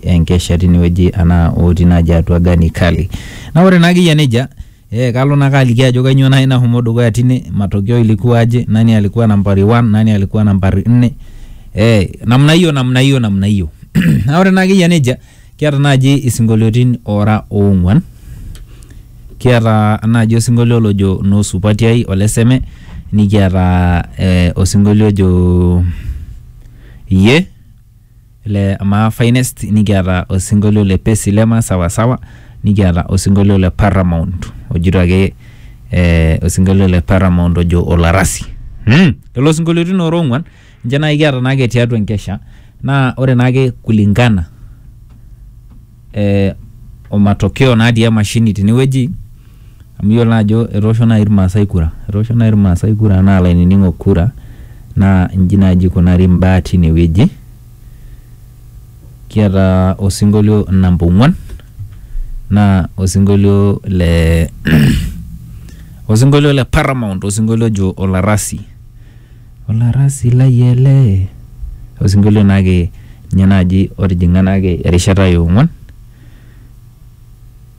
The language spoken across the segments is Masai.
enkesha tinewueji anaa otii naaji atua Gani Kali. Na ore naa akeyia nejia eh, kalo naake aliki ajo kainyoo naaji nashomo dukuya tine, matokeo ilikuwa aje, nani alikuwa nambari one, nani alikuwa nambari nne, eh, namna hiyo, namna hiyo, namna hiyo. na ore naa akeyia nejia kiata naaji isinkolioitin oora oong'uan kiata naaji osinkolio lojo noo supati ai ole seme nikiata eh, osinkolio ojo iyie le maa finest nikiata osinkolio le pesi lema sawasawa nikiata osinkolio le paramount ojito ake eh, osinkolio le paramount ojo olarasi hmm. lelo sinkolioitin ora ong'uan ninche naaji kiata naake tiatua enkesha naa ore naake kulingana eh, o matokeo natii emashini tinewueji amu iyiolo naa ajo etoosho naaji irmaasai kura etoosho naaji irmaasai kura naa ilainining'ok kura naa inji naaji ikunari imbaa tinewueji kiata osinkolio namba ong'uan naa osinkolio le osinkolio le paramount osinkolio ojo olarasi. Olarasi lai ele. Osinkolio naake ninye naaji otijing'a naake erishata e ong'uan.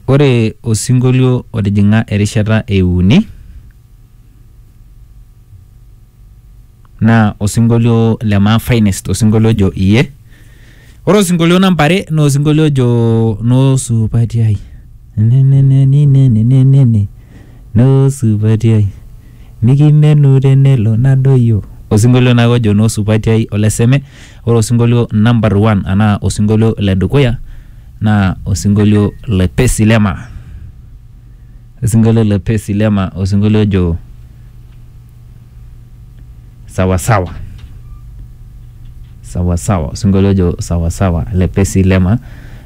Ore osinkolio otijing'a erishata e uni naa osinkolio le maa finest, osinkolio ojo iye. Ore osinkolio namba are naa osinkolio ojo noo supati ai Nenenenenenenenene, noo supati ai mikimenu tenelo nadoyio osinkolio naake ojo noo supati ai ole seme ore osinkolio number one anaa osinkolio le dukuya naa osinkolio le pesi lema osinkolio le pesi lema osinkolio ojo sawasawa sawasawa osinkolio ojo sawasawa le Pesi Lema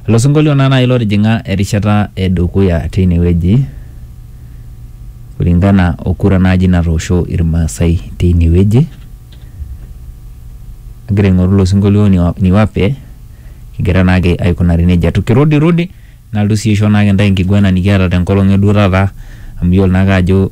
ilo sinkolio naa naaji lotijing'a erishata edukuya teine wueji kulingana o kura naaji natoosho Irmaasai teine wueji agira aing'oru ilo sinkolio ni- niwape kigira naake aikunari nejia tukirudirudi nalotu sii aisho naake intae enkiguana nikiata tenkolong eduo taata amu iyiolo naake ajo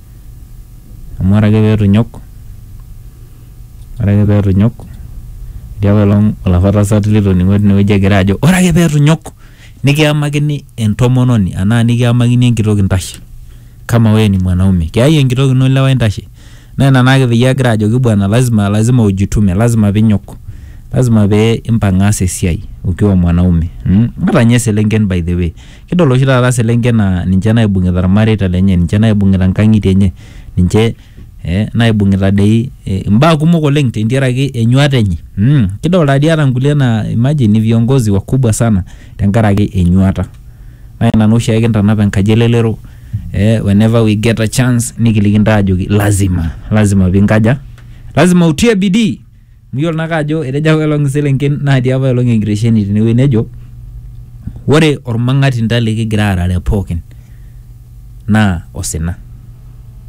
amu ore ake pee eitu inyok, ore ake pee eitu inyok, etii apaelong olapa tasat litoning'o teine wueji egira ajo ore ake pee eitu inyok nikiyamakini entomononi anaa nikiyamakini enkitok intashe kama wewe ni mwanaume kiyai enkitok ino ilewa intashe naa ina naake peyie agira ajoki bwana lazima lazima ujitume lazima piinyok lazima pee impang aas esiai ukiwa mwanaume mmh ata ninye iselenken by the way. Kidol oshi taata selenken naa ninche naibung'ita irmareita lenye, ninche naibung'ita nkang'itie enye, ninche eh, naibung'ita dei eh, imbaa kumok oleng tentiaraki enyuata enye mm. Kidol taa dii ata nkulie naa imagine ni viongozi wakubwa sana tenkaraki enyuata. Naa ina naa oshiake kintanap enkaji elelero eh, whenever we get a chance nikiliki intae ajoki lazima, lazima piinkaja, lazima utie bidii. Miyiolo naake ajo etejo apa elong iselenken natii apa elong enkitesheni tenewueji nejo ore ormang'atinta likigira aarare pookin naa osina.